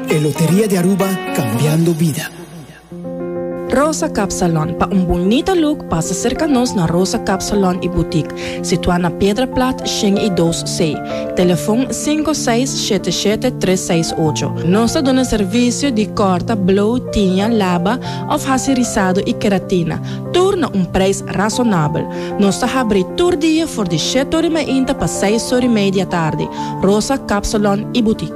E Loteria di Aruba, Cambiando Bida. Rosa Cap Salon, pa un bunita look pasa serka nos na Rosa Cap Salon y Boutique, situá na Piedra Plat shen y dos C, telefon sinku seis shete shete tres seis ocho. Nos ta duna servisio di kòrta, blow, tiña, laba òf hasi risado y keratina, tur na un preis rasonabel. Nos ta habri tur dia for di shèt ori mainta pa seis ori mei di atardi. Rosa Cap Salon y Boutique.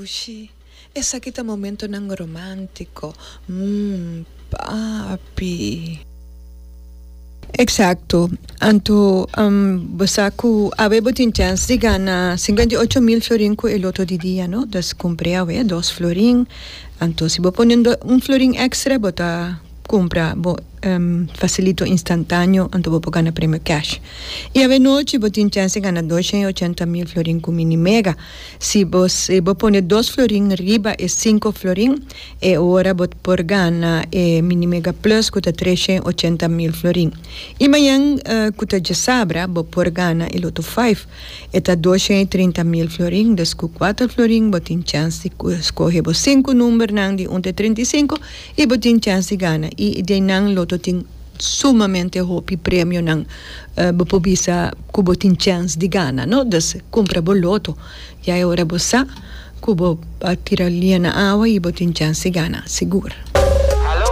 Ushi, esaki ta momentonan romántico, mm, papi. Exacto, anto bo sa cu awe bo tin chance di gana cincuenta y ocho mil florin cu e loto di dia, no? Entonces cumpre awe dos florin, anto si bo pone un florin extra bo ta cumpra bo facilito instantaneo anto bo por gana premio cash. Y awe nochi bo tin chance di gana doshen y ochenta mil florin cu mini mega. Si bo si bo pone dos florin riba e sinku florin, e ora bo ta por gana e Mini Mega Plus ku ta tres shen ochenta mil florin. I mañan ku ta djesabra bo por gana e Loto Five, e ta dos shen i trinta mil florin. Des ku kuater florin bo tin chèns di skohe bo sinku numbernan di un ta e trenta i sinku i bo tin chèns di gana. I di einan Loto tin. Sumamente hopi premionan bo por bisa cu bo tin chens di gana, no? Dus cumpra bo loto. Ya e ora bo sa cu bo a tira lia na awa y bo tin chens di gana sigur.